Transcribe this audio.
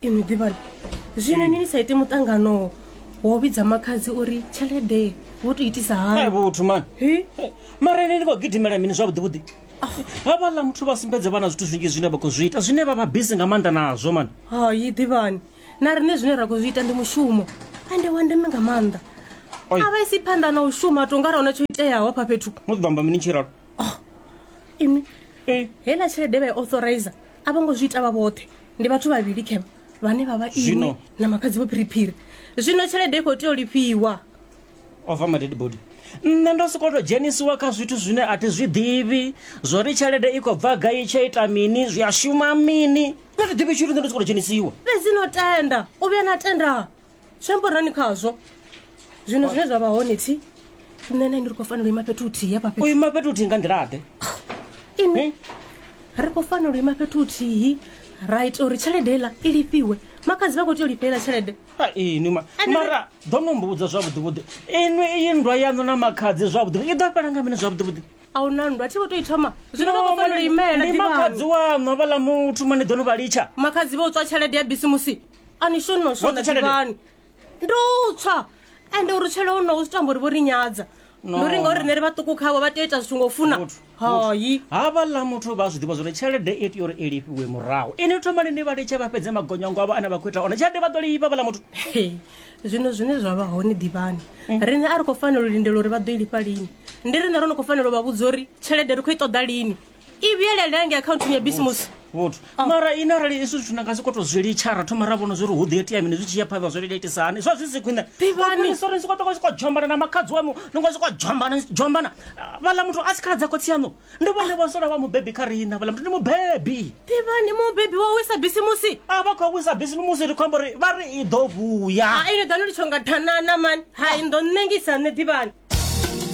inwi ḓivhani zwino ni ni sa ite muṱangano wo vhidza makhadzi uri tshelede wo to itisa hai hani vhuthu mani Hi? mara ine ni khou gidimela mini zwavhuḓi vhuḓi havha ḽa muthu vha sumbedze vhana zwithu zwinzhi zwine vha khou zwi ita zwine vha vha bisi nga maanḓa nazwo mani hai ḓivhani na riṋe zwine ra khou zwi ita ndi mushumo ende wa ndeme nga maanḓa Oi. a vha isi phanḓa na u shuma to nga ra huna tsho iteaho hafha fhethu mu ḓo amba mini tshiralo oh imi eh hela tshelede vha authorize a vho ngo zwi ita vha vhoṱhe ndi vhathu vhavhili khevha vhane vha vha imi na makhadzi vho phiriphiri zwino tshelede i khou tea u lifhiwa ova madedi body nṋe ndo sokoto dzhenisiwa kha zwithu zwine a thi zwi ḓivhi zwo ri tshelede i khou bva gai tshe ita mini zwi a shuma mini nṋe thi ḓivhi tshithu nṋe ndo sokoto dzhenisiwa fhedzi no tenda u vhuya na tenda shemborani khazwo zwino zwine zwa vha hone thi nṋe na ndi ri khou fanela u ima fhethu huthihi hafha fhethu ima fhethu huthihi nga nḓilaḓe ini ri khou fanela u ima fhethu huthihi ra ita uri tshelede iḽa i lifhiwe makadzi vha khou tea u lifhela tshelede ini ma mara ḓo no mbudza zwavhuḓivhuḓi inwi iyi nndwa yaṋu na makhadzi zwavhuḓivhuḓi i ḓo fhela nga mini zwavhuḓivhuḓi a hu na nndwa thi vho tou i thoma zwino vha khou fanela u imela ndi makhadzi waṋu havhaḽa muthu mani ḓo no vha litsha makhadzi vha u tswa tshelede ya bisimusi a ni shoni no shona ḓivhani ndo tswa ende uri tshele o no u tamba uri vho ri nyadza ndo ri ngauri rine ri vhaṱuku khavho vha tea ita zwithu ngo funa hayi havha ḽa muthu vha zwi ḓivha zwori tshelede i tea uri i lifhiwe murahu ini thoma lini vha litshe vha fhedze magonyango avho ane vha khou ita one tshelede vha ḓo lifha vhaḽa muthu zwino zwine zwa vha hone ḓivhani mm. rine a ri khou fanela u lindela uri vha ḓo i lifha lini ndi rine ro no khou fanela u vha vhudza uri tshelede ri khou i ṱoḓa lini i vhuyelela ngei akhaunthini ya bisimusi vhuthu oh. mara ine arali izwi zwithu na nga si koto zwi litsha ra thoma ra vhona zwi ri hu ḓi itea mini zwi tshi ya phanḓa zwo iletisa hani zwa zwi si khwine ivhanisori siko toko siko jombana na makhadzi wamu ni ngo siko jombana jombana vhala muthu a si khaladza khotsi yaṋu ndi vhone vho sola vha mubebi kha riṋa vhala muthu ndi mubebi ivhani mubebi wa wisa bisimusi a vha khou wisa bisimusi ri khombo ri vha ri i ḓo vuya ine ḓa no litsho nga thanana mani hai ndo ṋengisa nṋe ḓivhani